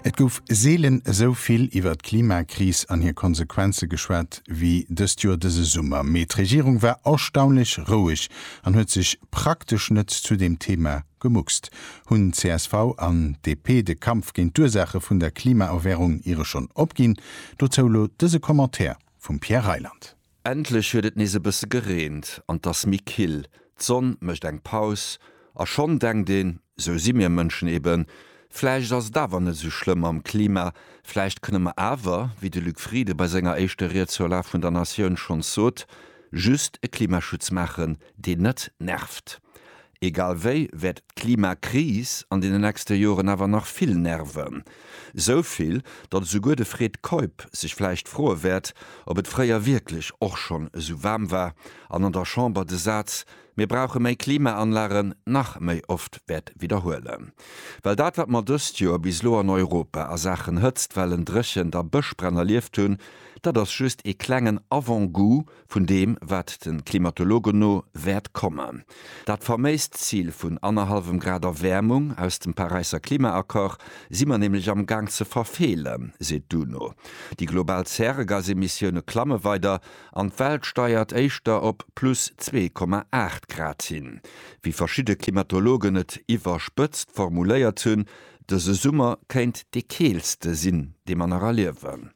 Et gouf seelen esou vill iwwer d'Klimakris an hir Konsequenze geschwat wéi dëst Joer dëse Summer. Mee d'Regierung war erstaunlech roueg an huet sech praktesch net zu deem Thema gemuckst. Hunn csv an DP de Kampf géint d'Ursaache vun der Klimaerwäerung iere schonn opginn? Dozou elo dëse Commentaire vum Pierre Reyland. Endlech huet et nees e bësse gereent an 't ass méi kill. D'Sonn mécht eng Paus a schonn denkt een, Esou si mir Mënschen eben, vläicht ass et awer net esou schlëmm mam Klima, vläicht kënne mer awer, wéi de Luc Frieden bei senger éischter Ried zur Lag vun der Natioun schonns sot, just e Klimaschutz maachen, deen net nervt. Egal wéi wäert d'Klimakris an deenen nächste Joren awer nach vill nerven. Esou vill, datt esouguer de Fred Keup sech vläicht froe wäert, ob et fréier wierklech och schonn esou waarm war an an der Chamber de Saz Mir brauche méi Klimaanlagen nach méi oft wäert widderhuelen. Well dat, wat mer dëst Joer bis elo an Europa a Saachen Hëtztwellen, Dréchent a Bëschbränn erlieft hunn, dat ass just ee klengen Avant-goût, vun deem, wat de Klimatologen no wäert kommen. Dat faméist Zil vun annerhallwem Grad Erwäermung aus dem Paräisser Klimaaccord si mer nämlech am Gaang ze verfeelen, seet d'UNO. Déi global Zäregasemissioune klamme weider an d'Welt steiert éischter op plus 2,8 Grad hin. Wéi verschidde Klimatologen et iwwerspëtzt formuléiert hunn, dëse Summer kéint dee keelste sinn, dee mer nach erliewen.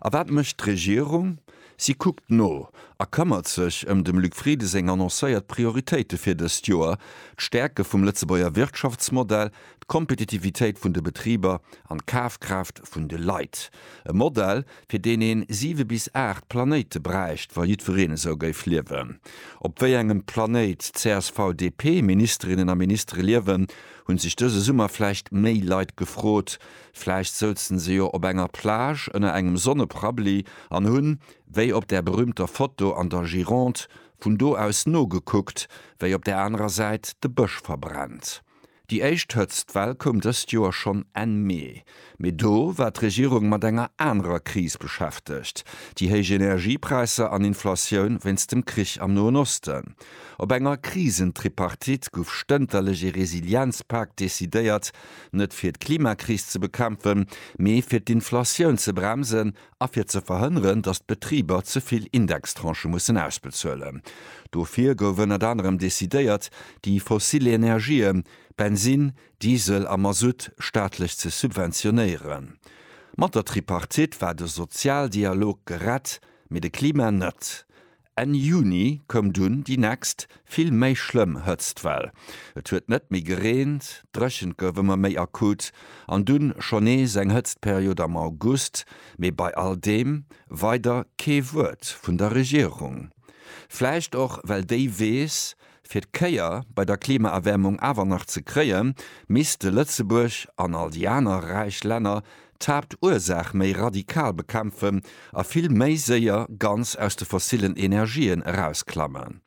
A wat mécht d'Regierung? Si kuckt no a këmmert sech ëm dem Luc Frieden seng annoncéiert Prioritéite fir dëst Joer, d'Stäerke vum Lëtzebuerger Wirtschaftsmodell, d'Kompetitivitéit vun de Betriber an d'Kafkraaft vun de Leit. E Modell, fir deen een siwe bis aacht Planéite bräicht, wa jiddwereen esou géif liewen. Op wéi engem Planéit d'CSV-DP-Ministerinnen a Ministere liewen, hu sech dëse Summer vläicht méi Leit gefrot, Vläicht souzen se jo op enger Plage ënner engem Sonneprabli an hunn, wéi op där berühmter Foto an der Gironde, vun do aus nogekuckt, wéi op där anerer Säit de Bësch verbrennt. Déi éischt Hëtztwell koum dëst Joer schonn Enn Mee, mee do war d'Regierung mat enger anerer Kris beschäftegt, déi héich Energiepräisser an Inflatioun wéinst dem Krich am Noen Osten. Op enger Krisentripartite gouf stënterlech ee Resilienzpak decidéiert, Net fir d'Klimakris ze bekämpfen, mee fir d'Inflatioun ze bremsen a fir ze verhënneren, datt d'Betriber ze vill Indextranchë mussen ausbezuelen. Dofir gouf ënnert anerem decidéiert, déi fossil Energien, Bensinn, Diesel a Masutt, staatlech ze subventionéieren. Mat der Tripartite war de Sozialdialog gerett, mee de Klima net. Enn Juni koum dunn déi nächst, vill méi schlëmm Hëtztwell. Et huet net méi gereent, d'Dréchent gouf ëmmer méi akut an dunn schonn nees eng Hëtztperiod am August, mee bei all deem weider kee Wuert vun der Regierung. Vläicht och well déi weess, Fir d'Kéier bei der Klimaerwäermung awer nach ze kréien, misste Lëtzebuerg, an all déi aner räich Länner, d'Haaptursaach méi radikal bekämpfen a vill méi séier ganz aus de fossillen Energien erausklammen.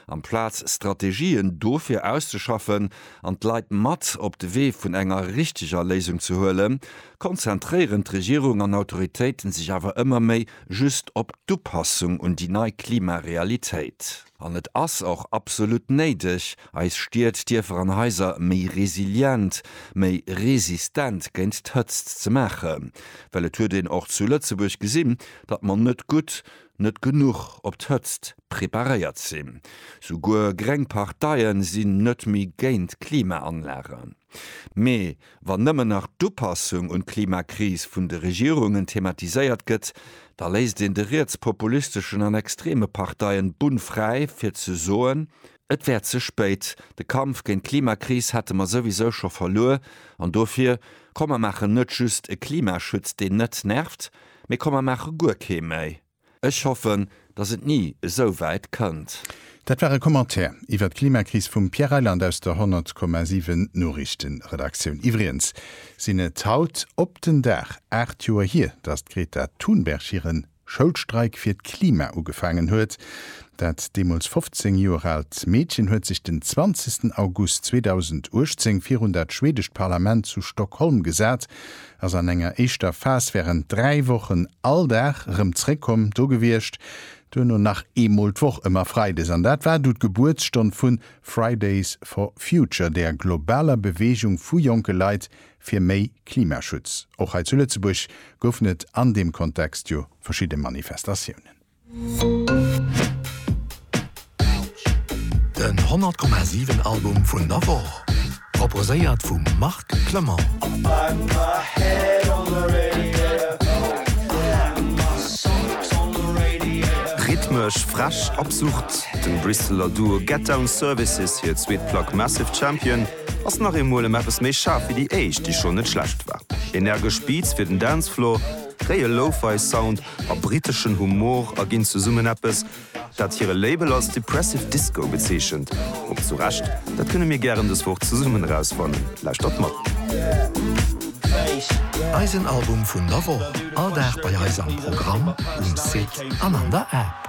Amplaz Strategien dofir auszeschaffen an d'Leit mat op de Wee vun enger richteger Léisung ze huelen, konzentréieren d'Regierung an Autoritéiten sech awer ëmmer méi just op d'Upassung un déi nei Klimarealitéit. An et ass och absolut néideg, eis Stied, Dierfer an Haiser méi resilient, méi resistent géint d'Hëtzt ze maachen. Well et huet een och zu Lëtzebuerg gesinn, datt mer net gutt, net genuch op d'Hëtzt preparéiert sinn. Souguer gréng Parteie sinn net méi géint Klimaanlagen. Mee wann nëmmen nach d'Upassung un d'Klimakris vun de Regierungen thematiséiert gëtt, da léisst een de rietspopulisteschen an extreme Parteien d'Bunn fräi fir ze soen, et wär ze spéit, de Kampf géint d'Klimakris hätte mer souwisou scho verluer an dofir, komm mer maachen net just e Klimaschutz deen net nervt, mee komm mer maache guer kee méi. Ech hoffen, datt et ni esou wäit kënnt. Dat war e Commentaire iwwert d'Klimakris vum Pierre Reyland aus der 100,7 Noriichtenredaktioun. Iwwregens sinn et haut op den Dag 8 Joer hier, datt d'Greta Thunberg hiren Schoulstreik fir d'Klima ugefaangen huet. Dat deemools 15 Joer aalt Meedchen huet sech den 20 August 2018 virun dat schwedescht Parlament zu Stockholm gesat ass an enger éischter Phas wärend dräi Wochen all Dag erëm zréckkomm do gewiescht, duerno nach eemol d'Woch ëmmer freides. An dat war du d'Gebuertsstonn vu Fridays for Future, der globaler Beweegung vu jonke Leit fir méi Klimaschutz. Och hei zu Lëtzebuerg goufen et an deem Kontext jo verschidde Manifestatiounen. Den 100,7 Album vun der Woch, proposéiert vum Marc Clement. Rhythmesch frech, absurd, dem Bristeler Duo Get Down Services hir zweet Plack Massive Champion ass nach eemol ëm eppes méi schaarf wéi déi éischt, déi schonn net schlecht war. Energesch Beats fir den Dancefloor, réie Lo-Fi Sound a briteschen Humor a ginn zesummen eppes, dat hire Label als Depressive Disco bezeechent. Ob zu Recht? Dat kënne mir gären dës Woch zesummen erausfannen. Lauschtert mat! Eisen Album vun der Woch, all Dag bei eis am Programm, um Site an an der App.